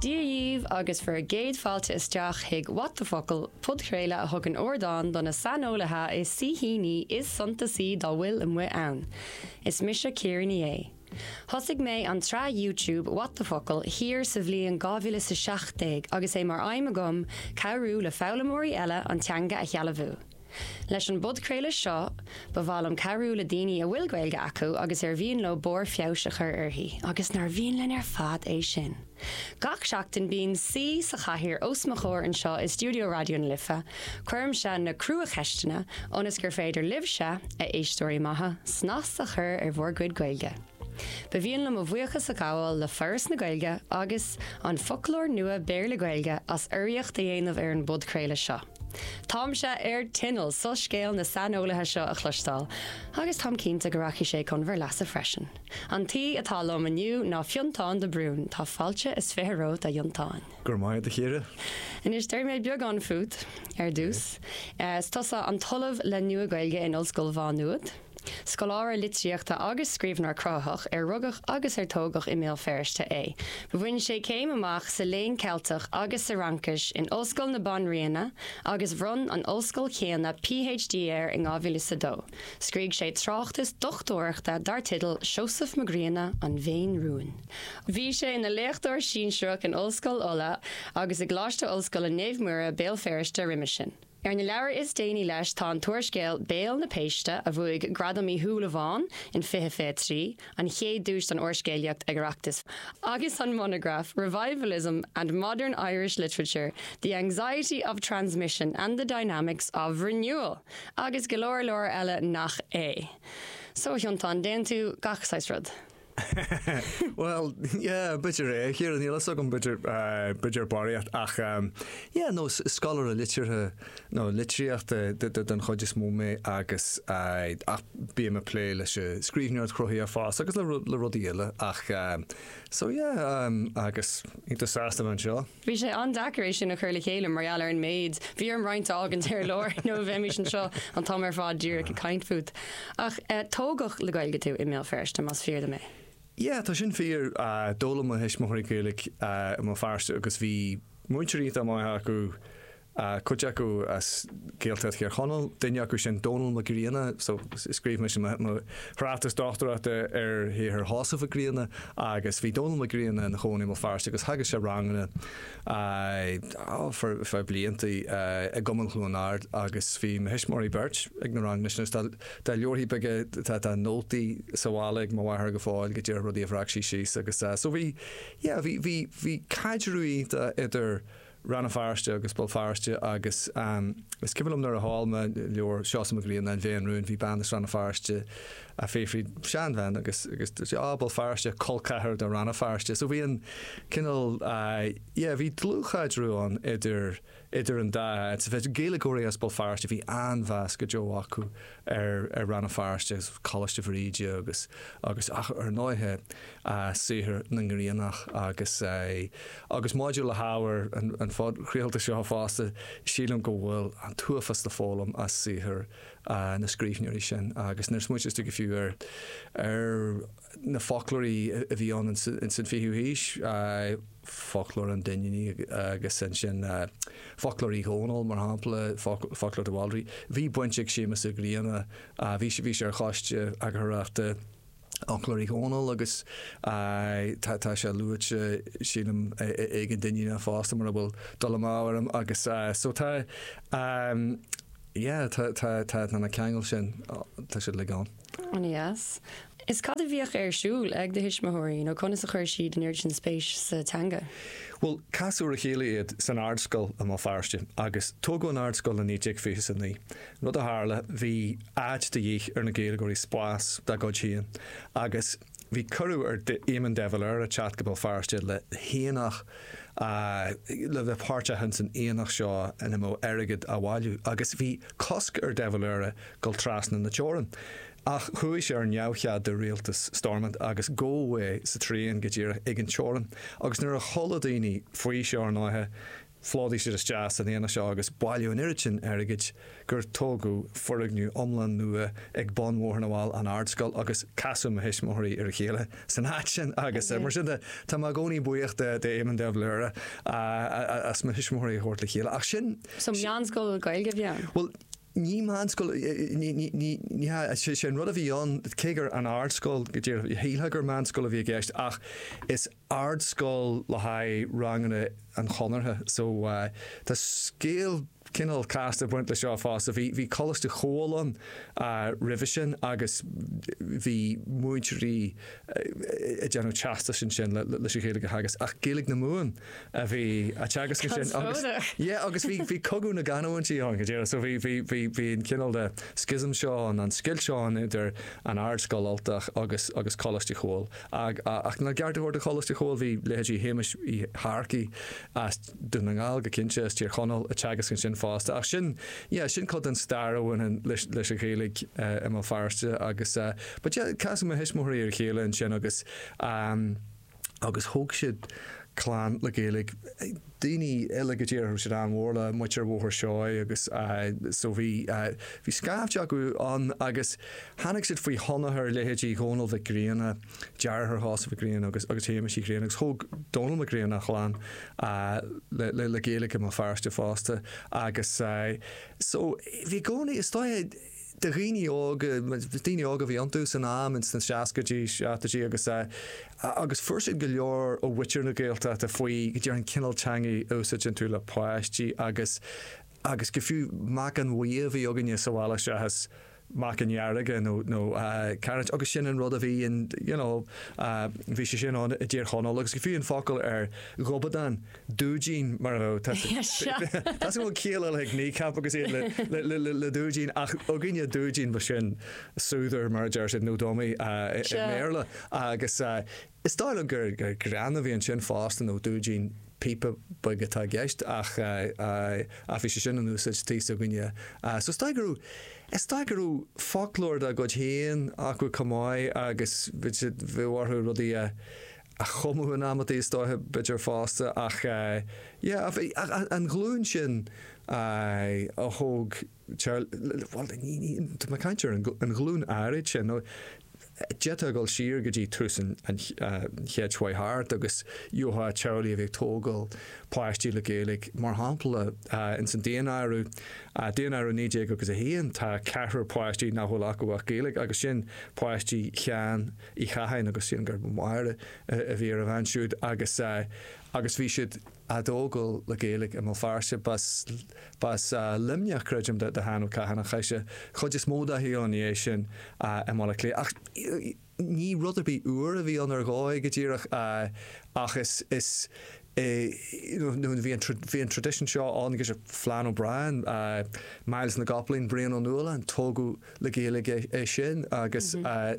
Dia dhíbh agus bhur gcéad failte isteach chuig What the Focal, podchraoladh a thugann ardán do na saineolaithe is saoithíní is suntasaí dá bhfuil amuigh ann. Is mise Ciara Ní É. Thosaigh mé an tsraith YouTube What the Focal thiar sa bhliain 2017 agus é mar aidhm agam cabhrú le foghlaimeoirí eile an teanga a shealbhú. Leis an bpodchraoladh seo, ba mhaith liom cabhrú le daoine a bhfuil Gaeilge acu agus ar mhian leo barr feabhais a chur uirthi, agus nár mhian linn ar fad é sin! Gach seachtain bíonn saoi sa chathaoir os mo chomhair anseo i stiúideo Raidió na Life, cuirimse na crua-cheisteanna, ionas gur féidir libhse, a éisteoirí maithe, snas a chur ar bhur gcuid Gaeilge. Ba mhian liom mo bhuíochas a ghabháil le Foras na Gaeilge agus An Foclóir Nua Béarla-Gaeilge as urraíocht a dhéanamh ar an bpodchraoladh seo. Táimse ar tinneall soiscéal na saineolaithe seo a chloisteáil, agus táim cinnte go rachaidh sé chun bhur leasa freisin. An t-aoi atá liom inniu ná Fionntán de Brún. Tá fáilte is fiche romhat, a Fhionntáin. Go raibh maith agat, a Chiara. Anois, déarfaidh mé beagán fút, ar dtús. Is tusa an tOllamh le Nua-Ghaeilge in Ollscoil Mhá Nuad. Scoláire litríochta agus scríbhneoir cruthaitheach a rugadh agus a tógadh i mBéal Feirste é. Bhain sé céim amach sa Léann Ceilteach agus sa Fhraincis in Ollscoil na Banríona agus bhronn an ollscoil chéanna PhD air in 2002. Scríobh sé tráchtas dochtúireachta dar teideal Seosamh Mac Grianna, An Mhéin Rúin. Bhí sé ina léachtóir sinsearach in Ollscoil Uladh agus i gColáiste Ollscoile Naomh Muire, Béal Feirste, roimhe sin. Ar na leabhair is déanaí leis tá an t-úrscéal Béal na Péiste a bhuaigh Gradam Uí Shúilleabháin in 2023, an chéad duais don úrscéalaíocht ag Oireachtas, agus an monagraf Revivalism and Modern Irish Literature, The Anxiety of Transmission and the Dynamics of Renewal! agus go leor leor eile nach é. So a Fhionntáin, déanann tú gach saghas rud. Bhuel, yeah, b'fhéidir é, a Chiara, níl a fhios agam, b'fhéidir, b'fhéidir barraíocht, ach, yeah, nó scoláire liteartha nó litríochta den chuid is mó mé agus, ach bím ag plé leis an scríbhneoireacht chruthaitheach fosta agus le rudaí eile ach, so, yeah, agus iontach sásta a bheith anseo. Bhí sé an-deacair é sin a chur le chéile mar gheall ar an méid. Bhí orm roinnt a fhágaint ar lár nó bheimís anseo an t-am ar fad díreach ag caint fút. Ach eh, tógadh le Gaeilge tú i mBéal Feirste, más fíor dom é? Yeah, tá sin fíor. D'fhoghlaim mo thuismitheoirí Gaeilge i mBéal Feirste agus bhí múinteoirí iontach maith acu. cuid acu as Gaeltacht Thír Chonaill, duine acu sin Dónall Mac Grianna, so scríobh mé mo thráchtas dochtúireachta ar shaothar Sheosaimh Mhic Grianna agus bhí Dónall Mac Grianna ina chónaí i mBéal Feirste agus theagasc sé ranganna, á, fá blianta, i gCumann Chluain Ard agus bhí mo thuismitheoirí beirt ag na ranganna sin agus tá leabhra beaga, tá nótaí sa bhaile ag mo mháthair go fóill go díreach rudaí a bhreac sí síos agus, so bhí, yeah, bhí, bhí, bhí caidreamh iontach idir Rann na Feirste agus Béal Feirste agus is cuimhin liom nuair a tháinig leabhar Seosamh Mac Grianna An Bhé Rún bhí bean as Rann na Feirste ag fiafraí, seanbhean, agus agus dúirt sí Á, Béal Feirste, col ceathar de Rann na Feirste so bhí an cineál yeah bhí dlúthchaidreamh ann idir idir an dá áit, Gaeilgeoirí as Béal Feirste bhí an-mheas go deo acu ar Rann na Feirste agus Coláiste Bhríde agus, agus ach ar ndóighe, saothar na nGriannach agus, agus maidir le hábhar an phodchraolta seo fosta, sílim go bhfuil an t-uafás le foghlaim as saothar na scríbhneoirí sin agus nuair a smaoiníos tú go fiú ar, ar, na foclóirí a bhí ann ins an 20ú haois, Foclóir an Duinnínigh agus ansin Foclóir Uí Dhónaill, mar shampla, Foclóir de Bhaldraithe. Bhí baint ag Séamus Ó Grianna, bhí sé ar choiste eagarthóireachta Fhoclóir Uí Dhónaill agus tá sé luaite, sílim, ag an Duinníneach fosta, mura bhfuil dul amú orm, agus so tá, yeah, tá na ceangail sin, tá siad uilig ann. An-deas. Is cad a bhíodh ar siúl ag do thuismitheoirí nó conas a chuir siad an oiread sin spéis sa teanga? Bhuel, casadh ar a chéile iad san ardscoil i mBéal Feirste agus tógadh an ardscoil i 1929. Rud a tharla, bhí áit de dhíth ar na Gaeilgeoirí spás dá gcuid féin agus, Bhí cuireadh ar Éamon de Valera teacht go Béal Feirste le haonach, le bheith páirteach ins an aonach seo ina mbeadh airgead á bhailiú, agus bhí cosc ar de Valera dul trasna na teorann. Ach chuaigh sé ar neamhchead do rialtas Stormont agus gabhadh é sa traein, go díreach ag an teorainn, agus nuair a chuala daoine faoi seo ar ndóighe, Phlódaigh siad isteach san aonach seo agus bailíodh an oiread sin airgid gur tógadh foirgneamh iomlán nua ag bun Bhóthar na bhFál, An Ardscoil, agus casadh mo thuismitheoirí ar a chéile san áit sin agus mar sin de tá mé i gcónaí buíoch d'Éamon de Valera as mo thuismitheoirí a thabhairt le chéile. Ach sin. So meánscoil Gaeilge a bhí ann? Bhuel, ní meánscoil, ní hea, sé an rud a bhí ann, cé gur An Ardscoil, go díreach, shílfeá gur meánscoil a bhí i gceist ach is, ardscoil le haghaidh ranganna an Chonartha. So, tá scéal cineál casta ag baint leis seo fosta. Bhí, bhí Coláiste Chomhghaill ann roimhe sin agus bhí múinteoirí ag déanamh teastais ansin leis an Ghaeilge a theagasc ach Gaeilge na Mumhan a bhí á teagasc ansin agus, yeah, agus bhí, bhí cogadh na gcanúintí ann, go díreach. So bhí, bhí, bhí, bhí an cineál de schism seo ann, an scoilt seo ann idir an Ardscoil Ultach agus, agus Coláiste Chomhghaill. Ach lena gceart a thabhairt do Choláiste Chomhghaill bhí leithéidí Shéamais Uí Shearcaigh as Dún na nGall, go cinnte, as Tír Chonaill ag teagasc ansin fosta. Ach sin, yeah, sin cuid den stair a bhaineann leis an Ghaeilge i mBéal Feirste agus, but yeah, casadh mo thuismitheoirí ar a chéile ansin agus, um, agus thóg siad clann le Gaeilge. daoine eile go díreach, bhí siad an-mhór le muintir Bhóthar Seoighe agus so bhí bhí scaifte acu ann agus tháinig siad faoi thionchar leithéidí Dhónaill Mhic Grianna, deartháir Sheosaimh Mhic Grianna agus agus Shéamais Uí Ghrianna agus thóg Dónall Mac Grianna a chlann le Gaeilge i mBéal Feirste fosta agus so bhí i gcónaí is dóigh, de dhaoine óga, daoine óga a bhí iontu san am, ins na seascaidí, seachtóidí agus agus fuair siad go leor ó mhuintir na Gaeltachta faoi, go deimhin, an cineál teangaidh a úsáideann tú le páistí agus agus go fiú meacain bhuí a bhí againne sa bhaile seachas meacain dhearga nó nó cairéid agus sin an rud a bhí ann, you know, bhí sé sin ann i dTír Chonaill agus go fiú an focal ar ghobadán, dúidín mar a bheadh, tá a fhios agam go bhfuil ciall eile ag Kneecap agus iad le dúidín ach againne dúidín ba sin soother mar a deir siad, nó dummy i mBéarla agus is dóigh liom gur greann a bhí ansin fosta nó dúidín píopa beag atá i gceist ach bhí sé sin in úsáid thíos againne so is dóigh go raibh, is dóigh go raibh foclóir dá gcuid féin acu chomh maith agus bhí orthu rudaí a. a chumadh in amantaí is dóiche b'fheidir fosta ach yeah ach an ghlúin sin a thóg bhuel ní ní tá mé ag caint ar an an ghlúin áirid sin nó d'fhéadfá dul siar go dtí tús an an chéid seo thart agus gheofá teaghlaigh a bhí ag tógáil páistí le Gaeilge mar shampla ins an daonáireamh daonáireamh 19 agus 1 tá ceathrar páistí nach bhfuil acu ach Gaeilge agus sin páistí Sheáin Uí Chatháin agus sílim gurb í Máire a bhí ar a bhean siúd agus agus bhí siad a' tógáil le Gaeilge i mBéal Feirste. B'as, b'as Luimneach creidim do Sheán Ó Catháin ach chaith sé chuid is mó dá shaol i ndiaidh sin i mBaile Átha Cliath ach ní rud ar bith úr a bhí ann ar dhóigh go díreach ach is, is, Bhí an traidisiún seo ann, Flann O'Brien, Myles na gCopaleen, Brian Ó Nualláin, tógadh le Gaeilge é sin agus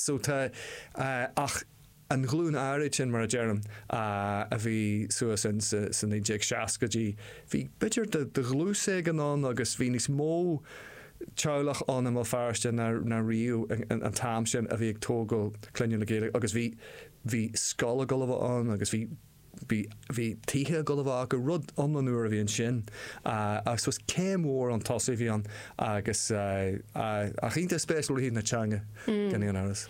so tá ach an ghlúin áirid sin, mar a deirim, a bhí suas sa 1960idí, bhí b'fhéidir de dhlús éigin ann agus bhí níos mó teaghlach ann i mBéal Feirste ná riamh an t-am sin a bhí ag tógáil clainne le Gaeilge agus bhí scoil ag dul a bheith ann agus bhí Bhí tithe ag dul a bheith gur rud iomlán úr a bhí ansin ach is céim mhór chun tosaigh a bhí ann agus ach iontach spéisiúil ó thaobh na teanga gan aon amhras.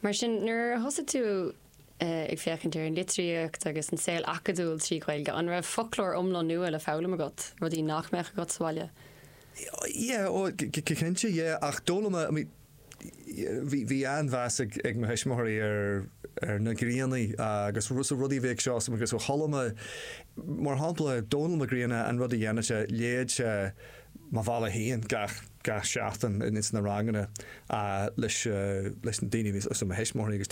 Mar sin, nuair a thosaigh tú ag féachaint ar an litríocht agus an saol acadúil trí Ghaeilge, an raibh foclóir iomlán nua le foghlaim agat, rudaí nach mbeadh agat sa bhaile? Yeah, go cinnte, yeah, ach d'fhoghlaim mé, I mean, Bhí an-mheas ag mo thuismitheoirí ar na Griannaigh agus rudaí a bhí ag Seosamh agus ó chuala mé, mar shampla, Dónall Mac Grianna, an rud a dhéanadh sé, léadh sé Mo Bhealach Féin gach seachtain ins na ranganna leis na daoine a bhí, leis na mo thuismitheoirí agus daoine.